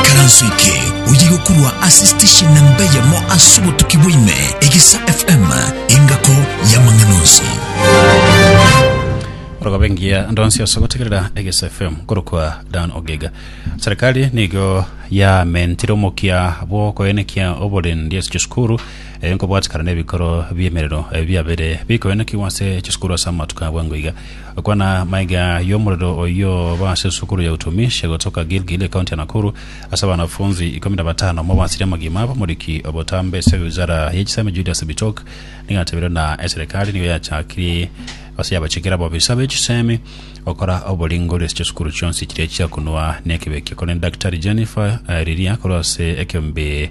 Ekaranso eke oye gokurwa ase station namba eyemo ase obotuki bwaime egesa fm engako y'amang'ana onsi orogobengia ndonsi ase gotegerera egesa fm korokwa dan ogega serikali nigo yamentire omokia bw'okoenekia oborendi ase chisukuru Ee, nkobwatikana nebikoro bi'emerero biabere bikoenekigwa ase chisukuru ase amatuko abo engo iga, okwana maiga y'omorero oyio oba ase esukuru ya Utumishi egotoka Gilgil, ekaunti ya Nakuru, ase abanafunzi ikomi na batano. Omobasiri omogima b'omoriki obotambe ase ewizara ye chisemi Julius Bitok nigo atebirie ng'a eserekari nigo yachakirie gose yabachikera abaofisa be chisemi gokora oboringori ase chisukuru chionsi chiria chiakunwa nekebekia, korende Daktari Jennifer Riria korwa ase ekeombe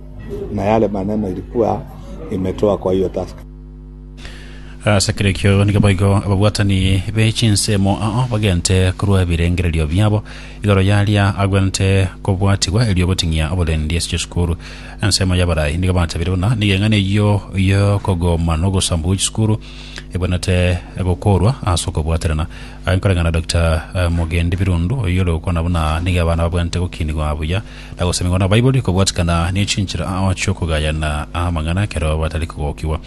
Na yare maneno ilikuwa imetoa kwa hiyo taska. Ase kera ekio nigo boigo ababwatani be chinsemo ao bagente korwa ebirengererio biabo igoro y'aria agwenerete kobwatigwa erio goting'ia oborendi ase chisukuru. Ensemo y'abarai nigo batabire buna nigo eng'ana eyio y'okogoma na ogosambu gwe chisukuru egwenerete gokorwa ase okobwaterana. Aye nkoreng'ana na Dokita Mugendi Birundu, oyio ore gokwana buna nigo abana babwenerete gokinigwa buya na gosemeigwa na Baibori, kobwatikana ne chinchera chi'okogayana amang'ana ekero batari kogokigwa.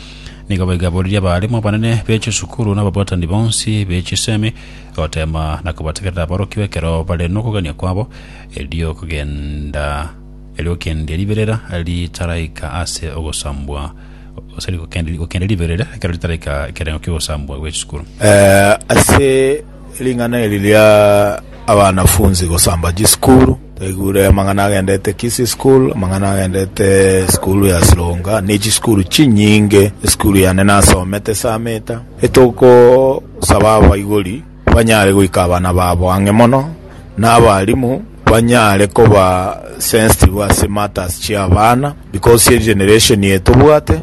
Nigo baigaboririe abaalimu abanene be chisukuru na ababwatani bonsi be chisemi, goteema na kobategerera aborokigwa ekero bare nokogania kwabo, erio okogenda erio gokendia riberera ritaraika ase ogosambwa, sorry, gokendia riberera ekero ritaraika ekerengo ki'ogosambwa gwe chisukuru. Ase Ring'ana eri ria abanafunsi gosamba chisukuru, twaigure amang'ana agendete Kisii school, amang'ana agendete esukuru ya Sironga, ne chisukuru chinyinge, esukuru yane nasomete esameta, etogosaba abaibori banyare goika abana babo ang'e mono, na abarimu banyare koba sensitive ase matters chi'abana, because egeneration eye tobwate.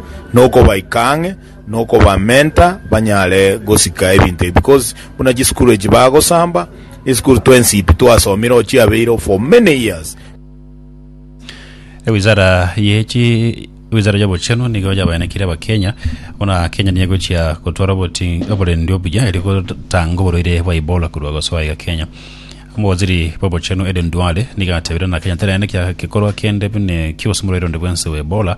nokobaika ang'e, nokobamenta banyare gosika ebinto ebi, because buna chisukuru echi bagosamba, esukuru twensipi twasomire oo chiabeire oo for many years. Ewizara ye chi ewizara y'obochenu nigo yabaenekire abakenya buna Kenya niye egochia gotwara oboti- oborendi obuya erio gotanga oborwaire bwa Ebola korwa gosoa iga Kenya. Omowaziri bw'obochenu Aden Duale nigo atebire ng'a Kenya teraenekia gekorwa kende buna ekiusu morwaire onde bwensi bwa Ebola,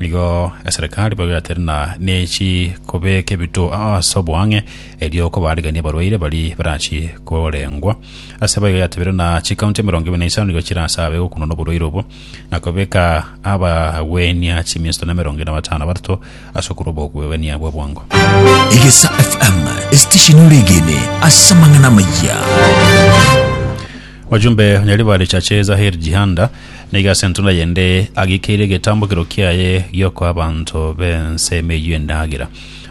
Nigo eserekari babeatere na nechi kobeka ebito ase oboang'e, erio kobaariiganie abarwaire baria barachi korengwa. Ase abaiga yatebire na chikaunti emerongo ebere na isano nigo chirasabe gokunwa noborwaire obo, na kobeka abagwenia chiminto na emerongo ene na batano na batato ase okorwa obogwenia bwa bwango. Egesa FM, esitesheni ore egene ase amang'ana amaya. Wajumbe onya riba richache Zahir Jihanda nigo ase entunda yende agikeirie egetambokero kiaye giokoa abanto b'ense emeyio endagera.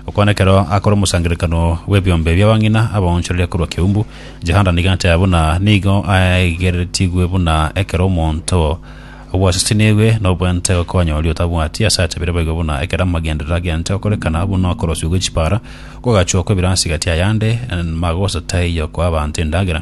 Okwana ekero akora omosangererekano bw'ebiombe bi'abang'ina abaonchoreria korwa Kiumbu, Jihanda nigo ateba buna nigo aegeretigwe buna ekero omonto obwasisinigwe nobwente gokonya oria otabwati ase atebire boigo buna ekero amagenderero agente gokorekana buna okorosiwa gwe chipara, kw'ogachokwa ebirasi gati ayande, magose taiyo koa abanto endagera.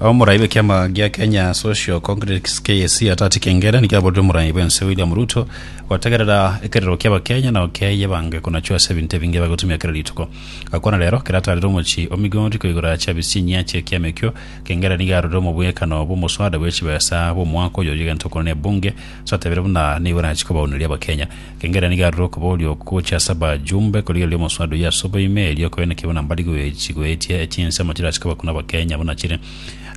Omorai bw'ekiama gia Kenya Social Congress KSC Atati Kengere nigo aborire omorai bw'ense William Ruto gotegerera ekerero ki'Abakenya na okeye bange konachwa ase ebinto ebinge bagotumia kera rituko. Gakwana rero, kera atarire omochie o Migori koigora chiabichi chinyia chi'ekiama ekio, Kengere nigo arorire omobwekano bw'omoswada bwe chibesa bw'omwaka oyo oria egento okoro n'ebunge, totebire buna nigo erachie kobaunereria Abakenya. Kengeria nigo arure okoboria okwo gochia ase abajumbe korigereria omosubado oyio ase oboime, erio koene kebwe na mbarigo chigoetie echinsemo chirachikabwe korwa abakenya buna chire.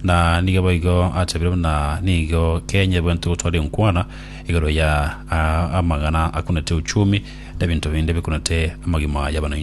Na nigo boigo achabire buna nigo Kenya ebwenerete gotwara enkwana igoro ya amagana akunete uchumi na ebinto binde bikunete amagima y'abananchi.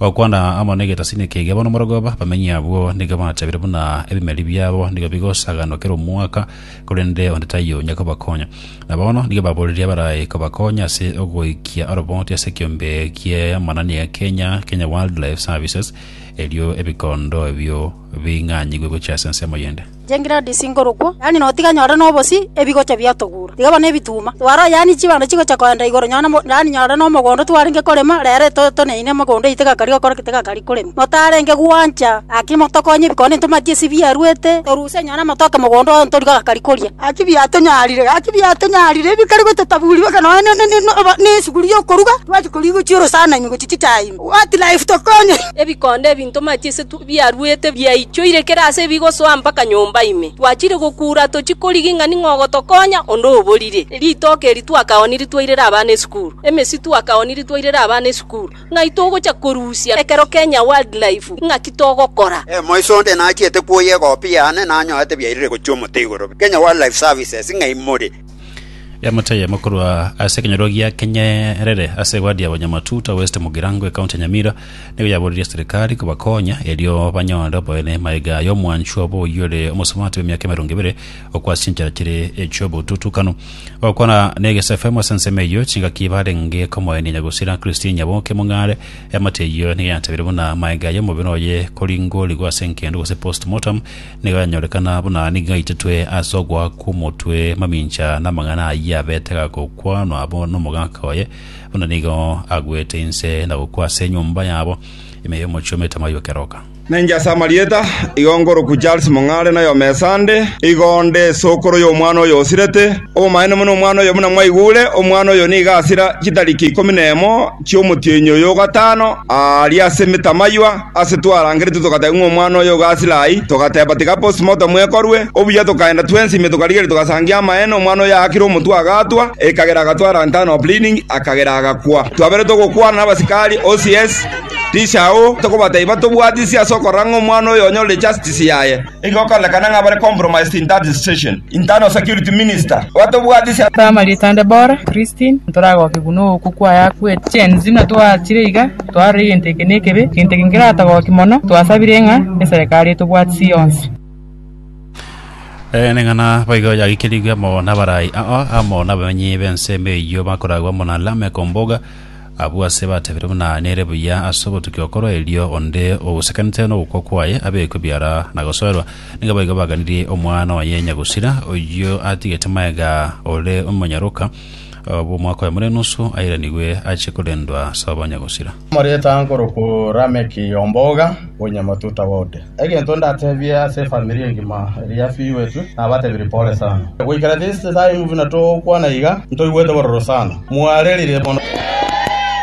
Gokwana amo negetasini kege bono moragoba, abamenyi abwo nigo bachabire buna ebimeri biabo nigo bigosaganwa kera omwaka, korende onde taiyo onya kobakonya. Na bono nigo baboreria abarae kobakonya ase ogoikia oroboti ase ekiombe ki'amanani egekenya Kenya Wildlife Services, erio ebikondo ebio bing'anyigwe gochia ase ensemo yende. Chingiradi chingorokwo, yaani notiga nyore nobosi, ebigocha biatogura. Tiga bono ebituuma. Twara yaani chibando chigocha koenda igoro nyore mo, yaani nyore nomogondo twarenge korema, rero toneine mogondo eye tegakari gokora ki tegakari korema. Notarenge gwancha, gaki motokonye ebikone ntomatie ase biaruete, toruse nyore amatoke mogondo oo ntori gagakari koria. Gaki biatonyarire, gaki biatonyarire ebikari gototaburi baka nonya ne ne ne ne obo ne esuguri yokoruga, twachia korigochia orosana ime gochia chichae ime. What life to Kony? Ebikondo ebi ntomache ase biaruete biaichoire kera aase ebigosoa mpaka nyomba ime. Twachire gokuura tochie korigi ng'a ning'o ogotokonya, onde oborire. Ritoke eri twakaonire twairera abana esukuru. Emesi twakaonire twairera abana esukuru. Ng'ai togocha korusia ekero Kenya Wildlife? Ng'aki togokora? Emoiso onde nachiete kwoyia egopi yane nanyorete biairire gochia omote igoro. Kenya Wildlife Services ng'ai more? Emete eyemo korwa ase ekenyoro gia Kenyerere ase ewadi ya Banyamatuta West Mugirango ekaunti ya Nyamira nigo yaboririe serikali kobakonya erio banyore oboene maega aya omwanchwa obo oyio ore omosubati bw'emiaka emerongo ebere okwa ase chinchera chire echi'obotutukanu ogokwana n'egesefemu ase ensemo eyio chingaki barenge komoenia nyagusira Christine Nyaboke Mong'are emate eyio nigo yatabire buna maega aya omobere oye koringorigwa ase enkendo gose postmortem Nigo yanyorekana buna nigo ngaitetwe ase ogoaka kw'omotwe mamincha namang'ana ayio abete agakokwanwa abo nomogaka oye, buna nigo agwete inse na gokwa ase enyomba yabo ime y'omochie omete amayio keroka. Nainche ase amarieta, igo nkorokwa Charles Mong'are na oyomo Esande, igo nde esokoro y'omwana oyo osirete, obomaene buna omwana oyo buna mwaigure, omwana oyo nigo asira chitariki ikomi nemo, ki'omotienyi oyo o gatano aaria ase emetamaiywa, ase twarangeretwe togategwa ng'a omwana oye o Gasilaai, togateba tiga postmortem ekorwe. Obuya tokaenda twensi ime tokarigeria togasangia amaene, omwana oye aakire omotwe agaatwa, ekagera agatwara internal bleeding, akagera agakwa. Twabeire togokwana nabasikari, OCS, Ri Shao, tokobatebia tobwatisi ase okorora ng'a omwana oyo onyorire justice yaye. Nigo okorekana ng'a bare compromised in that situation. Internal security minister, Batobwati ase Primary Etande Bora, Christine, Ntoragoke buna ookwo kwaye akwete. Gen Z na twaachire iga, twarora egento eke nekebe, egento eke nkeratogokia mono, twasabire ng'a eserekari etobwatisi yonsi. Eneng'ana boigo yagikerigwe amo nabaraai ao amo nabamenyi b'ensemo eyio bakoragwa amo na Lamek Omboga, Abwo ase batebire buna nere buya ase obotukia okorwa erio onde ogosekanete nogokwa kwaye abekwe biara na gosoerwa. Nigo boigo baganirie omwana oye nyagusira, oyio atigete maega ore omonyaroka bw'omwaka oyomo n'enusu airanigwe ache korendwa sobo nyagusira. Omoreta nkorokwo Lameki omboga, onye matuta gode. Egento ndatebie ase efamiri engima ere yafiirwetwe, nabatebirie pole sana. Goikera this time buna togokwana iga, ntoigwete bororo sana. Mwarerire mono.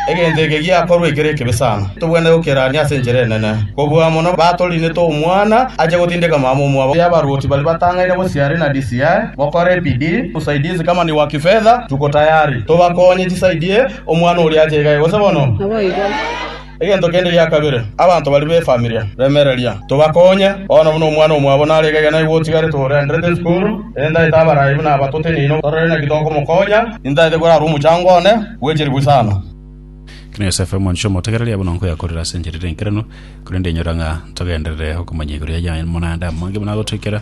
Egento eke giakorwa ekero ekibe sana. Tobwenerete gokerania ase enchera enene. Kobua amo na batorinete omwana ache gotindeka mama omwabo ya abaruoti baria batang'aine gosiare na DCI, mokore ebidii, usaidizi kama ni wa kifedha, tuko tayari. Tobakonye chisaidie omwana oria ache iga egose bono. Naboigo. Egento kende gia kabere, abanto baria b'efamilia, remereria, tobakonye. Bono buna omwana omwabo nare egegena igo otigarete orenderete isukuru, endaete abarai buna aba toteneine torore naki tokomokonya. Nintaete korara omochango one bwe chilifu isano. Ekero Yosefu ore monto omotegereria, buna nkoyakorera ase enchera ere enkeranu, korende inyora ng'a ntogenderere okomanya igoro ya Yane, monande amange buna agotoikera.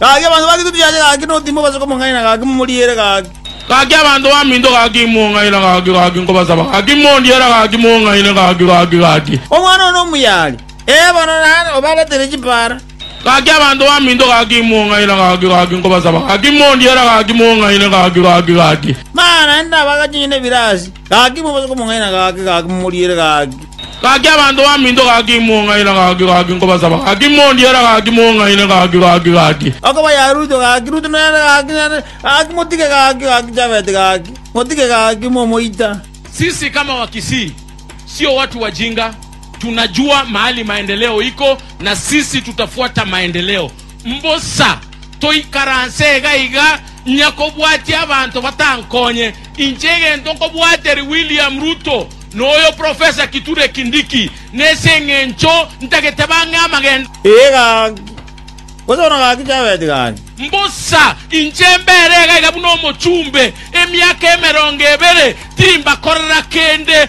Gaki abanto gaki totiache gaki notima obase komong'aina gaki momoriere gaki. Gaki abanto baminto gaki imong'aina gaki gaki nkobasaba gaki mondiera gaki mong'aine gaki gaki gaki. Omwana one omuya aria. Ee bono nare obaretire chipara. Gaki abanto baminto gaki imong'aina gaki gaki nkobasaba gaki mondiera gaki mong'aine gaki gaki gaki. Mana naende nabagache onye nebirasi. Gaki mobaise komong'aina, gaki, gaki momoriere, gaki. Gaki abanto baminto, gaki imong'aina, gaki, gaki nkobasaba, gaki mondiere, gaki mong'aine, gaki, gaki, gaki. Okoba ya Ruto, gaki, Ruto nere, gaki, nere, gaki motige, gaki, gaki Jafet, gaki, motige, gaki momoita. Sisi kama wakisii sio watu wajinga tunajua mahali maendeleo iko na sisi tutafuata maendeleo. Mbosa toikaranse iga iga ng'ia kobwatia abanto batankonye. Inche egento nkobwateria William Ruto na oyo Professor Kithure Kindiki nese eng'encho ntagete bang'e amagendo. Iga gose bono gaki chabeti gani? Mbosa inche mbere iga iga buna omochumbe emiaka emerongo ebere, timbakorera kende.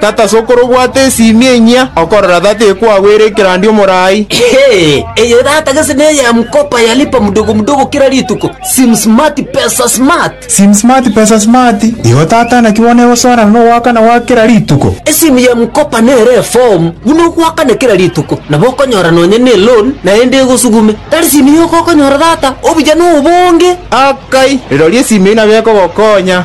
Tata ase okore obwate esiimi enyia, okorora tata ekwagwere ekerandia omorai. Eye tata gese neya mkopa ya lipa mdogo mdogo kera rituko, sim smart pesa smart. Sim smart pesa smart, igo tata naki bono egosoerana nogoakana gwa kera rituko. Esimu ya mkopa nere eform buna ogoakana kera rituko, nabo okonyora nonya ne loan naende egosugume. Tari simu yoka okonyora tata, obuya nobonge. Akai, rirorio esimu eyio nabo ekogokonya.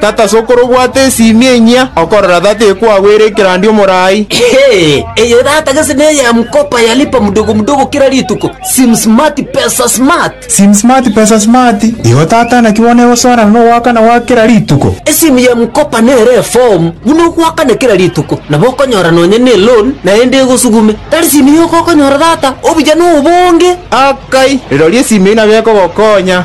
Tata sokoro obwate esimi enyia, okorora tata ekwagwere ekerandi omorai. Eye tata gese neye ya mkopa ya lipa mdogo mdogo kera rituko, sim smart pesa smart. Sim smart pesa smart, igo tata naki bono egosoana nogoakana gwa kera rituko. Esimi ya mkopa nere eform buna ogoakana kera rituko, nabo okonyora nonya ne loan naende egosugume. Tari simi yoka okonyora tata, obuya nobonge. Akai, rirorio esimi eyio nabo ekogokonya.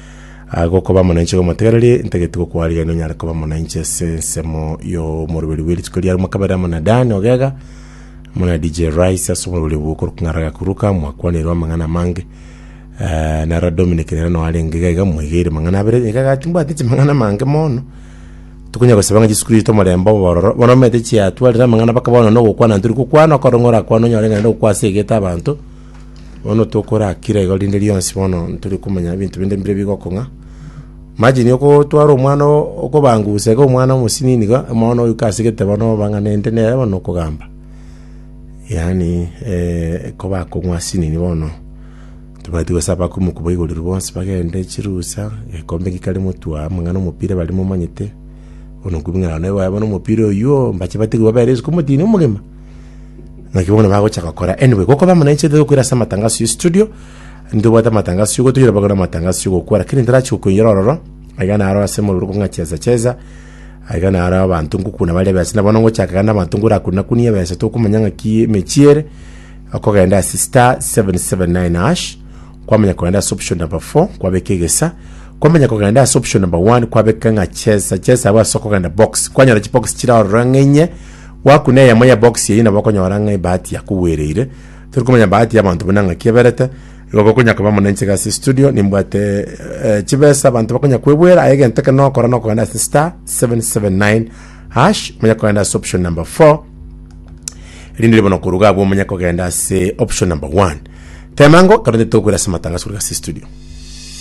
Aa, gokoba mo na inche gomotegereri, ntageti gokwarigeria nonyare koba mo na inche ase ensemo y'omoroberi bwe rituko ria rimo kabere amo na Dan Ogega, amo na DJ Rice ase omoroberi obwo okorwa K'ng'ara Gakuruka, mwakwanire amang'ana amange. Eh, na Ra Dominic nere noo arenge iga iga, mwegeire amang'ana abere, iga iga timbwati inche amang'ana amange mono. Tokonya gosaba ng'a chisukuru chiaito omorembe obo ororo, bono omanyete chiatwarire amang'ana mpaka bono nogokwana ntiri gokwana, okore ng'a orakwane onyore ng'a naende ogokwa ase egete abanto. Bono tokorakira igo rinde rionsi bono ntore komanya ebinto binde mbire bigokong'a. Imagine okotwara omwana o- okobanguse iga omwana omosinini iga, mono oika ase egeteba na obang'anente nere bono okogamba. Yaani eh, ko bakong'wa asinini bono, tobati gosaba ko mokobaigorerwa bonsi bagende chirusa, egekombe ki kare motwaa amang'ana omopira bare momanyete, bono nkobing'ana nabo baye bono omopira oyuo, mbache batigwe babere isiko omotino omogima. Naki bono bagocha gokora. Anyway, gokoba amo nainche ntete gokwera ase amatangaso ya studio. Ntobwate amatangaso gotoira bagora amatangaso gokwa lakini ntarachi gokoinyora ororo. Aiga naro ase mororo kong'a cheza cheza. Aiga naro abanto ngokuna bare besa. Na bono ngochaka gana abanto ngorakuna kunie besa tokomanya ng'aki emechie ere. Okogenda ase star 779 hash. Kwamanya kogenda ase option number 4 kwabeka egesa. Kwamanya kogenda ase option number 1 kwabeka ng'a cheza cheza abo ase okogenda box. Kwanyora chibox chire ororo ng'enye. Gwakuna eyemo ya box eyio nabo okonyora ng'a ebahati yakugwereire. Tori komanya bahati y'abanto buna ng'aki eberete. Igo gokonya koba mono inche iga ase estudio nimbwate eh, chibesa abanto bakonya kwebuera aye egento ekero nogokora nokogenda ase star 779 hash monya kogenda ase option number 4 erinde ribono koruga abwo omenye kogenda ase option number 1 temango karonde tokwira ase matangaso korwa ase studio